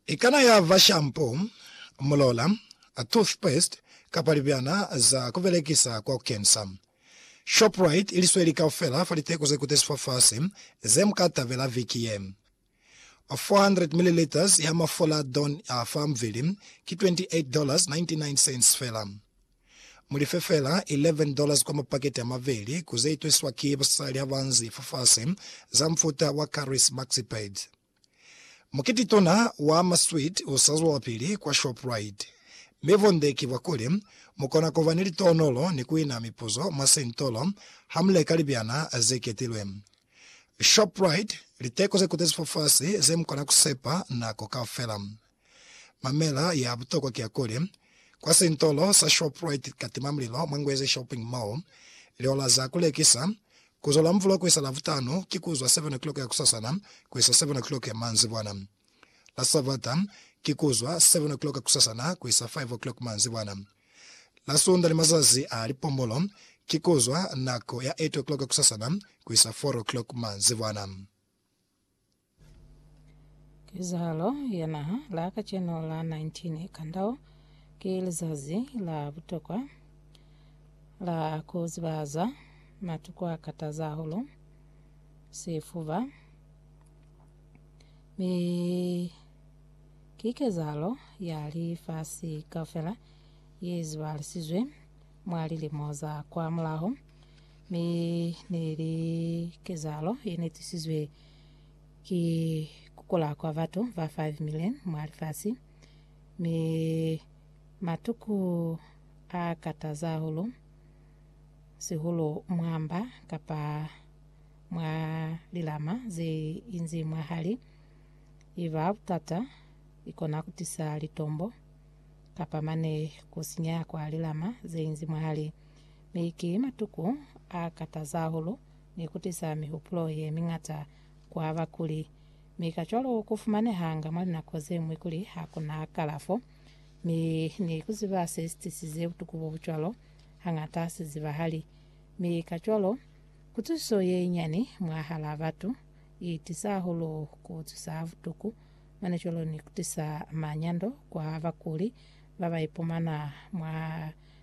Ikana ya ba shampo, mulola, toothpaste kapa libyana za ku belekisa kwa ku kensa. Shoprite ili sweli kaufela fa liteko ze kutezi fafasi ze mu ka tabela viki ye. 400 millilitres ya mafola Dawn fa mubili ki 28 dollars 99 cents fela. Mu life fela 11 dollars kwa mapaketi a maveli ku ze itwesiswa ki basali ha ba nzi fa fasi, za mufuta wa Caris Maxipad. Mukiti tona wa masweet u sa zwelapili kwa Shoprite. Mi bunde ki bwa kuli, mu kona ku ba ni litonolo ni ku ina mipuzo mwa sentolo ha mu leka libyana ze ketilwe. Shoprite, Liteko ze kutezi fa fasi ze mu kona ku sepa nako kaufela. Mamela ya butokwa ki ya kuli, Kwa sintolo sa Shoprite Katimamulilo mwa Ngwezi Shopping Mall, lihola za ku lekisa, ku zwa Lamvula ku isa Lavutanu, ki ku zwa 7 o'clock ya kusasana ku isa 7 o'clock ya manzibwana. La Sabata, ki ku zwa 7 o'clock kusasana ku isa 5 o'clock manzibwana. La Sunda ni mazazi a lipombolo, ki ku zwa nako ya 8 o'clock kusasana ku isa 4 o'clock manzibwana. Kezahalo ya naha la kacenu la 19 Kandao ki lizazi la butokwa la ku zibahaza matuku a kataza hahulu, sifuba, mi ki kezahalo ya lifasi kaufela ye zibahalisizwe mwa lilimo za kwa mulaho. Mi neli kezahalo yenetusizwe ki kukula kwa batu ba 5 million mwa lifasi, mi matuku a kataza hahulu, sihulu mwa mba kapa mwa lilama ze inzi mwa hali. Iba butata ikona kutisa litombo kapa mane kusinya kwa lilama ze inzi mwa hali. Mi ki matuku a kataza hahulu ni ku tisa mihupulo ye miñata kwa bakuli. Mi kacwalo ku fumanehanga mwa linako ze ñwi kuli ha ku na kalafo. Mi ni ku ziba se si tisize butuku bo bu cwalo hañata ha si zibahali. Mi kacwalo, kutusiso ye inyani mwahalaa batu i tisa hahulu ku cisa ha butuku, mane cwalo ni ku tisa manyando kwa bakuli ba ba ipumana mwa